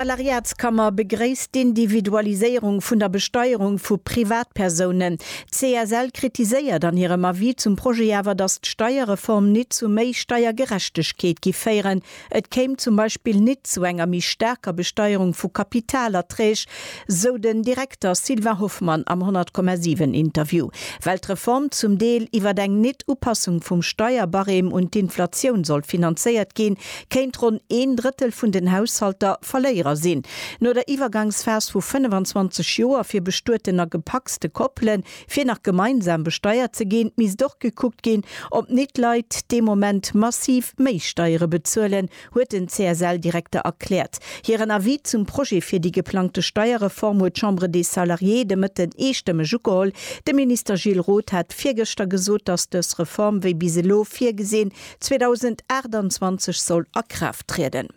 D'Salariatskammer begréisst d'Individualiséierung vun der Besteierung vu Privatpersounen. D'CSL kritiséiert an hirem Avis zum Projet awer, datt d'Steierreform nit zu méi Steiergerechtegkeet giff féieren. Et kéim zum Beispill nit zu enger méi staarker Besteierung vu Kapitalerträg, sou den Direkter Sylvain Hoffmann am 100,7 Interview, well d'Reform zum Deel iwwer eng Nit-Upassung vum Steierbarème un d'Inflatioun sollt finanzéiert ginn, kéint ronn een Drëttel vun den Haushalter Verléierer sinn. No der Iwwergangsphas vu 25 Joer fir bestueten a gepacste Koppele fir nach gemeinsam besteiert ze ginn, misst och gekuckt ginn, ob nit Leit dee Moment massiv méi Steiere bezuelen, huet den CSL-Direkter erkläert. Hiren Avis zum Projet fir déi geplangte Steierreform huet d'Chambre des Salariés de Mëtten eestëmmeg ugeholl. De Minister Gilles Roth hat virgëschter gesot, datt dës Reform wéi bis elo virgesinn, 2028 soll a Kraaft trieden.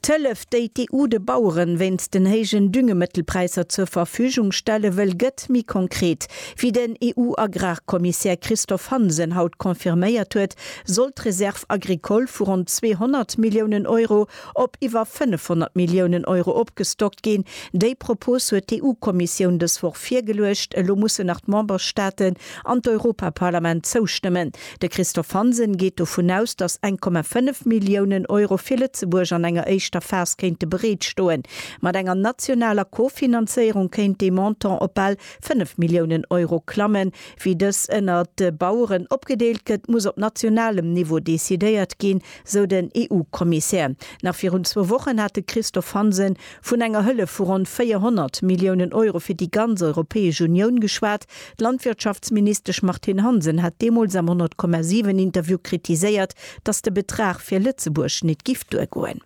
D'Hëllef, déi d'EU de Bauere wéinst den héijen Düngemëttelpräisser zur Verfügung stelle wëll, gëtt méi konkret. Wéi den EU-Agrarkommissär Christophe Hansen haut confirméiert huet, soll d'Reserve agricole vu ronn 200 Milliounen Euro op iwwer 500 Milliounen Euro opgestockt ginn. Déi Propos huet d'EU-Kommissioun dës Woch virgeluecht. Elo mussen nach d'Memberstaaten an d'Europaparlament zoustëmmen. De Christophe Hansen geet dovun aus, datt 1,5 Milliounen Euro fir Lëtzebuerg an enger éischter Phas kéinte bereet stoen. Mat enger nationaler Co-Finanzéierung kéint dee Montant op bal 5 Milliounen Euro klammen. Wéi dës ënnert de Baueren opgedeelt gëtt, muss op nationalem Niveau decidéiert ginn, sou den EU-Kommissär. Nach virun zwou Wochen hat de Christophe Hansen vun enger Hëllef vu ronn 400 Milliounen Euro fir déi ganz Europäesch Unioun geschwat. D'Landwirtschaftsministesch Martine Hansen hat deemools am 100,7 Interview kritiséiert, datt de Betrag fir Lëtzebuerg nit giff duergoen.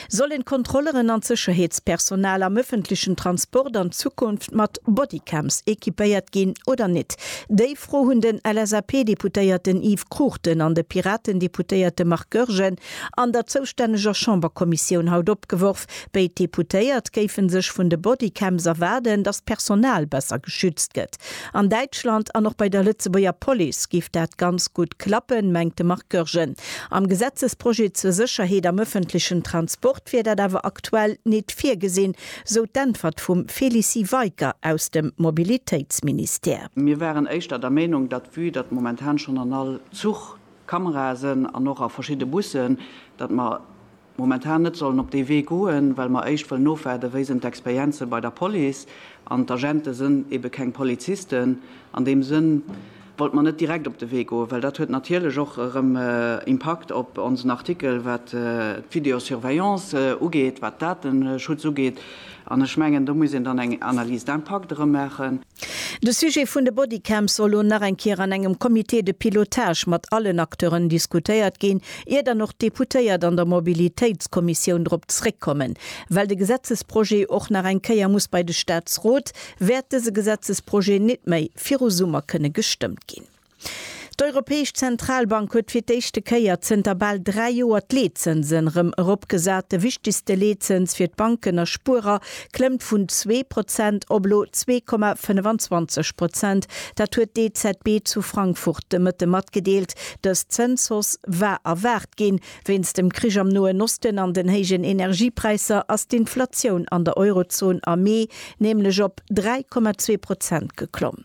Sollen d'Kontrolleren an d'Sécherheetspersonal am ëffentlechen Transport an Zukunft mat Bodycams equipéiert ginn oder nit? Déi Fro hunn den LSAP-Deputéierten Yves Cruchten an de Piraten-Deputéierte Marc Goergen an der zoustänneger Chamberkommissioun haut opgeworf. Béid Deputéiert géife sech vun de Bodycams erwaarden, datt d'Personal besser geschützt gëtt. An Däitschland an och bei der Lëtzebuerger Police géif dat ganz gutt klappen, mengt de Marc Goergen. Am Gesetzesprojet zur Sécherheet am ëffentlechen Transport wier dat awer aktuell nit virgesinn, sou d'Äntwert vum Félicie Weicker aus dem Mobilitéitsministère. Mir waren éischter der Meenung, datt vue datt momentan schonn an all Zuch Kamerae sënn an och a verschidde Bussen, datt mer momentan net sollen op dee Wee goen, well mer éischt wëllen ofwaarden, wéi sinn d'Experienze bei der Police. An d'Agente sënn ebe keng Polizisten. An deem Sënn wollte mer net direkt op de Wee goen, well dat huet natierlech och erëm Impakt op onsen Artikel, wat d'Videosurveillance ugeet, wat Dateschutz ugeet. An ech mengen, do muss een dann eng Analyse d'impact erëm maachen. De Sujet vun de Bodycams soll lo nach eng Kier an engem Comité de pilotage mat allen Acteuren diskutéiert ginn, ier dann och d'Deputéiert an der Mobilitéitskommissioun drop zréckkommen. Well de Gesetzesprojet och nach eng Kéier muss bei de Staatsrot, wäert dëse Gesetzesprojet nit méi viru Summer kënne gestëmmt ginn. D'Europäesch Zentralbank huet fir d'éischte Kéier zënter bal dräi Joer d'Leetzënsen erëm eropgesat. De wichtegste Leetzëns fir d'Banken a Spuerer klëmmt vun zwee Prozent op elo zwee Komma 25 Prozent. Dat huet d'EZB zu Frankfurt de Mëtte matgedeelt. Dës Zënshausse war erwaart ginn. Wéinst dem Krich am Noen Osten an den héijen Energiepräisser ass d'Inflatioun an der Eurozon am Mee nämlech op 3,2 Prozent geklomm.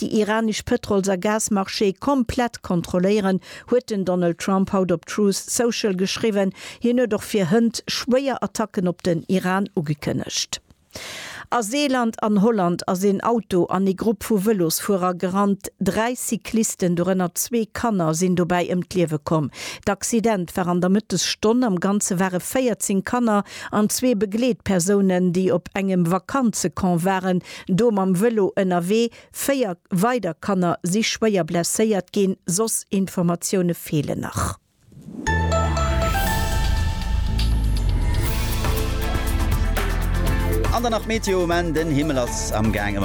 déi iranesch Pëtrols a Gasmarchéë komplett kontrolléieren, huet den Donald Trump haut op Truth Social geschriwwen. Hien huet och fir hënt schwéier Attacken op den Iran ugekënnegt. A Seeland an Holland ass een Auto an ee Grupp vu Vëlosfuerer gerannt. Dräi Cyclisten, dorënner zwee Kanner, sinn dobäi ëm d'Liewe komm. D'Accident war an der Mëttesstonn. Am Ganze ware 14 Kanner an zwee Begleetpersounen, déi op engem Vakanzecamp waren, Do mam Vëlo ënnerwee, véier weider Kanner si schwéier blesséiert ginn, soss Informatioune feelen nach. An dann nach d'Meteo um Enn, den Himmel ass am gaang ëmmer.